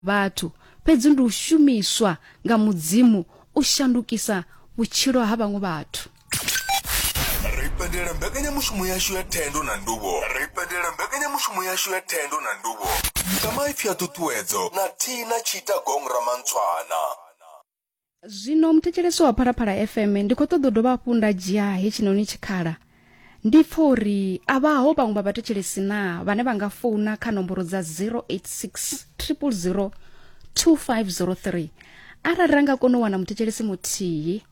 vhathu, fhedzi ndi u shumiswa nga Mudzimu u shandukisa vhutshilo ha vhaṅwe vhathu. Ri pendelela mbekanyamushumo yashu ya thendo na nduvho. Ri pendelela mbekanyamushumo yashu ya thendo na nduvho. Mutamaipfi a ṱhuṱhuwedzo na Tina Tshita Gong Ramantswana. zwino muthetshelesi wa phalaphala fm ndi khou ṱoḓa u dovha hafhu nda dzhia hetshinoni tshikhala ndi pfa uri a vhaho vhaṅwe vha vhathetshelesi na vhane vha nga founa kha nomboro dza 086 000 2503 arali ra nga kona u wana muthetshelesi muthihi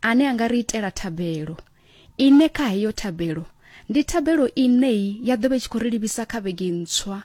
ane a nga ri itela thabelo Ine kha heyo thabelo, ndi thabelo ine i ya ḓo vha i tshi khou ri livhisa kha vhege ntswa.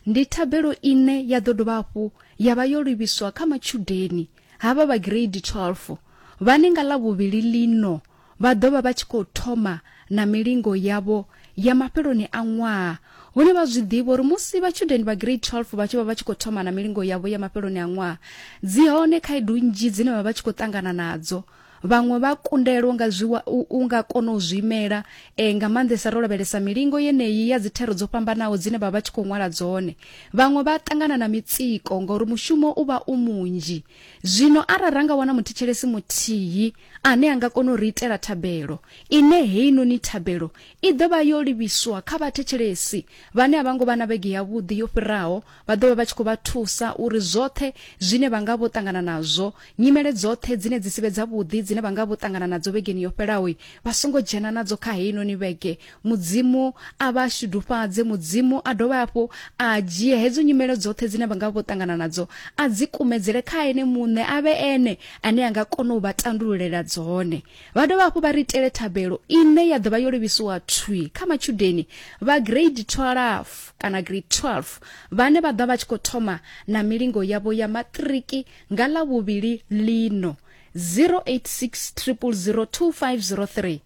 Ndi thabelo ine ya ḓo dovha hafhu ya vha yo livhiswa kha matshudeni havha vha gireidi 12 vhane nga Ḽavhuvhili ḽino vha ḓo vha vha tshi khou thoma na milingo yavho ya mafheloni a ṅwaha, hune vha zwi ḓivha uri musi vhatshudeni vha gireidi 12 vha tshi vha vha tshi khou thoma na milingo yavho ya mafheloni a ṅwaha, dzi hone khaedu nnzhi dzine vha vha tshi khou ṱangana nadzo. vhaṅwe vha kundelwa nga zwiwa u nga kona u zwi imela e, nga maanḓesa ro lavhelesa milingo yeneyi ya dzithero dzo fhambanaho dzine vha vha tshi khou ṅwala dzone vhaṅwe vha ṱangana na mitsiko ngauri mushumo u vha u munzhi zwino arali ra nga wana muthetshelesi muthihi ane a nga kona u ri itela thabelo ine heinoni thabelo i ḓo vha yo livhiswa kha vhathetshelesi vhane a vha ngo vha na vhege yavhuḓi yo fhiraho Vha ḓo vha vha tshi khou vha thusa uri zwoṱhe zwine vha nga vho ṱangana nazwo, nyimele dzoṱhe dzine dzi si vhe dzavhuḓi dzine vha nga vho ṱangana nadzo vhegeni yo fhelaho, vha songo dzhena nadzo kha heinoni vhege. Mudzimu a vha shudufhadze. Mudzimu a dovhe hafhu a dzhie hedzo nyimele dzoṱhe dzine vha nga vha vho ṱangana nadzo a dzi kumedzele kha Ene Muṋe, a vhe Ene ane a nga kona u vha tandululela dzone. vha dovha hafhu vha ri itele thabelo ine ya ḓovha yo livhisiwa thwi kha matshudeni vha grade 12 kana grade 12 vhane vha ḓa vha tshi khou thoma na milingo yavho ya maṱiriki nga ḽa vhuvhili lino 086 0002503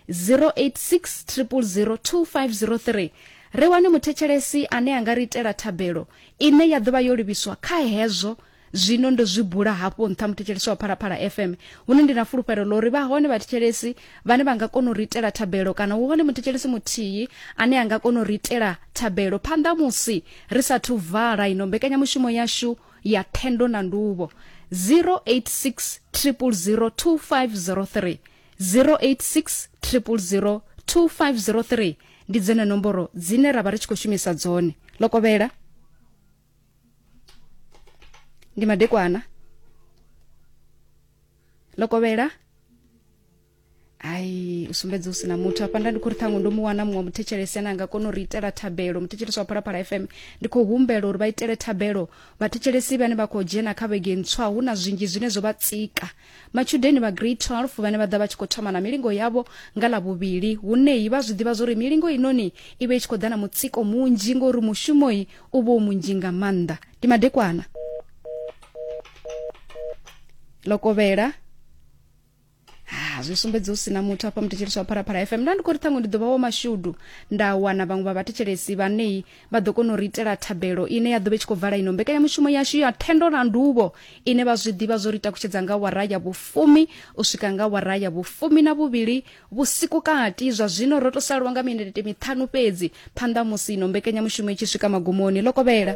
086 0002503 ri wane muthetshelesi ane a nga ri itela thabelo ine ya ḓovha yo livhiswa kha hezwo zwino ndo zwi bula hafho nṱha muthetshelesi wa phalaphala fm hune ndi na fulufhelo ḽo uri vha hone vhathetshelesi vhane vha nga kona u ri itela thabelo kana hu hone muthetshelesi muthihi ane a nga kona u ri itela thabelo phanḓa musi ri sathu vala ino mbekanyamushumo yashu ya thendo na nduvho 086 000 2503 086 000 2503 ndi dzene nomboro dzine ra vha ri tshi khou shumisa dzone lokovhela ndi madekwana ḽo kovhela ai u sumbedza u sina muthu hafha nda ndi khou ri ṱhaṅwe ndo mu wana muṅwe muthetshelesi ane a nga kona u ri itela thabelo muthetshelesi wa phalaphala fm ndi khou humbela uri vha itele thabelo vhathetshelesi vhane vha khou dzhena kha vhege ntswa hu na zwinzhi zwine zwo vha tsika matshudeni vha grade 12 vhane vha ḓa vha tshi khou thoma na milingo yavho nga ḽa vhuvhili huneyi vha zwi ḓivha zwori milingo inoni i vhe i tshi khou ḓa na mutsiko munzhi ngori mushumoyi u vha u munzhi nga maanḓa ndi madekwana lokovhela Ah, zwi sumbedza hu sina muthu afha muthetshelesi wa pharaphala fm nda ndi khou ri ṱhaṅwe ndi ḓo vha wa mashudu nda wana vhaṅwe vha vhathetshelesi vhanei vha ḓo kona u ri itela thabelo ine ya ḓo vha i tshi khou vala ino mbekanyamushumo yashu ya thendo na nduvho ine vha zwi ḓivha zwo ri takutshedza nga wara ya vhufumi u swika nga wara ya vhufumi na vhuvhili vhusiku kati zwa zwino ro to salwa nga minete miṱhanu fhedzi phanḓa musi ino mbekanyamushumo i tshi swika magumoni ḽo kovhela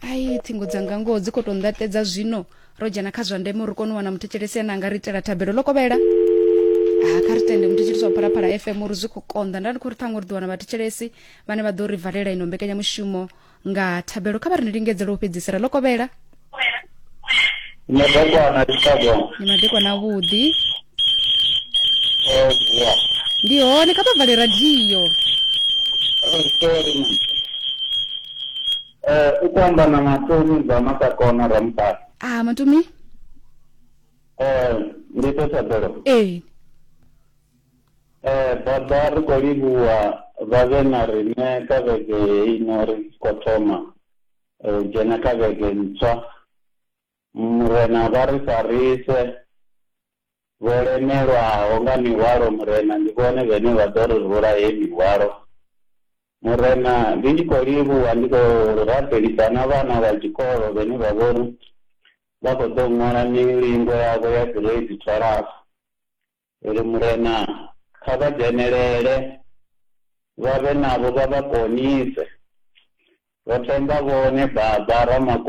ai ṱhingo dzanga ngoho dzi khou tou nḓaṱedza zwino ro dzhena kha zwa ndeme uri kone u wana muthetshelesi ane anga ri itela thabelo ḽo kovhela ha kha ri tende muthetshelesi wa phalaphala fm uri zwi khou konḓa nda ndi khou ri ṱhango ri ḓo wana vhathetshelesi vhane vha ḓo ri valela ino mbekanyamushumo nga thabelo kha vha ri ni lingedzela u fhedzisela ḽo kovhela madekwana chicago ni madekwana avhuḓi ndi hone kha vha vale radio sorry Eh, ukwamba na matomi bva masakona ramutala ah matomi eh ndi to thabelo ee eh baba ri khou livhuwa vha vhe na riṋe kha vhege heino ri tshi khou thoma eh, u dzhena kha vhege ntswa Murena vha ri farise, vho lemelwaho nga mihwalo Murena ndi vhone vhene vha ḓo ri rula heyi mihwalo Murena ndi tshi khou livhuwa ndi khou rabelisa na vhana vha tshikolo vhene vha vhori vha khou ḓo ṅwala milingo yavho ya gireidi thwalafu ri ri Murena kha vha dzhenelele vha vhe navho vha vha konise ro themba vhone baba Ramako.